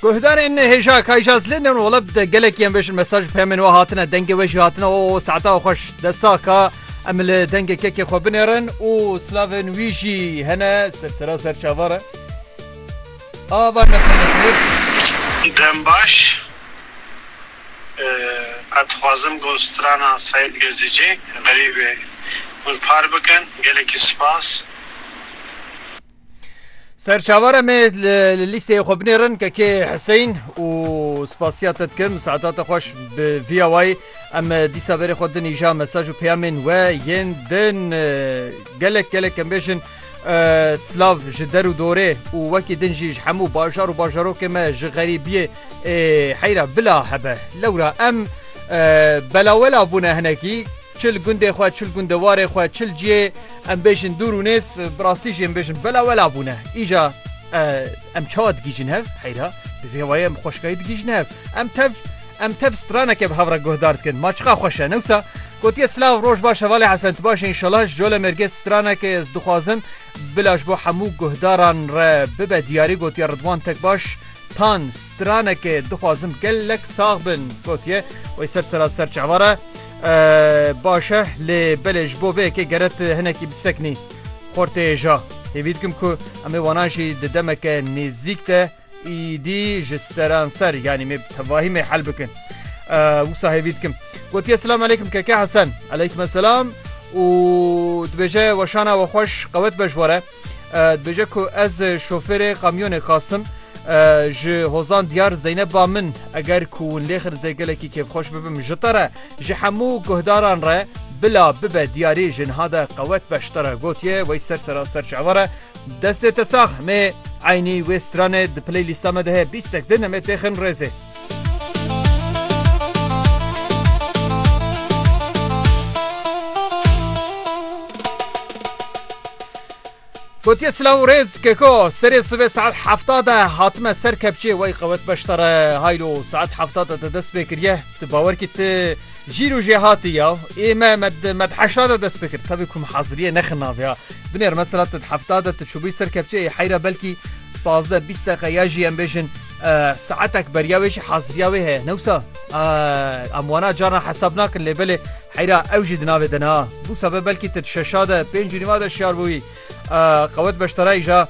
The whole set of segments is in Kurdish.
Guhdarên hêja kayjaz lê ne wala bi de gelek yên beşin mesaj pemên we hatine dengê we jî hatine o saeta xweş de saka em li dengê kekê xwe binêrin û slavên wî jî hene sersera ser çavare ava dem baş ez dixwazim ku strana Seîd Gezîcê xerîbê hûn par bikin gelekî spas. Serçavara me li lîsteyê xwe binêrin kekê Hiseyn û spasiya te dikim saeta te xweş bi vîya wayî em dîsa verê xwe din îja mesaj û peyamên we yên din gelek gelek em bêjin silav ji der û dorê û wekî din jî ji hemû bajar û bajarokê me ji xerîbiyê heyra bila hebe lewra em belawela bûne hinekî Çi li gundê xwe, çi li gundewarê xwe, çi li cihê em bêjin dûr û nêz, bi rastî jî em bêjin bela wela bûne. Îja em çawa digihîjin hev? Heyra, bi vê wayê em xweşikayî digihîjin hev. Em tev em tev straneke bi hev re guhdar dikin. Ma çiqa xweş e. Ne wisa? Gotiye silav roj baş hevalê Hesen tu baş e înşallah ji cole mêrgê straneke ez dixwazim bila ji bo hemû guhdaran re bibe diyarî gotiye Ridwan tek baş tan straneke dixwazim gelek sax bin gotiye wey ser sera ser çavara Baş e lê belê ji bo vê yekê gere tu hinekî bisekinî xortê ja. Hêvî dikim ku em ê wanan jî di demeke nêzîk de îdî ji seranser yanî mê bi tevahî mê hel bikin. Wisa hêvî dikim. Gotiye selam eleykum keke Hesen. Eleykum selam û dibêje weşana we xweş qewet be ji we re. Dibêje ku ez şofêrê kamyonê Qasim ji hozan diyar Zeyneb ba min eger ku hûn lê xilzê gelekî kêfxweş bibim ji te re ji hemû guhdaran re bila bibe diyarî ji niha de qewet beşte re gotiye wey ser seraser ji eware destê te sax mê eynî wê stranê di playlîsta me de heye bîstek din em ê têxin rêzê. Gotiye silav û rêz keko serê sibê saet hefta de hatime ser kepçê wey qewet beştare haylo saet hefta de te dest pê kiriye tu bawer kî tu jîr û jêhatî ya ê me me heşta de dest pê kir tevî kum heziriyê nexin naviya binêr mesela tu hefta de tu çûbî ser kepçê heyra belkî pazdeh bîst deqe ya jî em bêjin Saetek beriya wê jî haziriya wê heye ne wisa? Em wana carna hesab nakin lê belê heyra ew jî di navê de ne. Bû sebe belkî ti şeşa de pêncî nîva de şiyar bû wî. Qewet beştarayî ja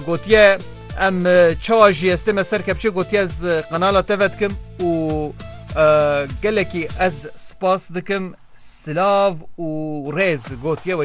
gotiye em çawa jî estê me ser kepçê gotiye ez qenala te vedikim û gelekî ez spas dikim silav û rêz gotiye wey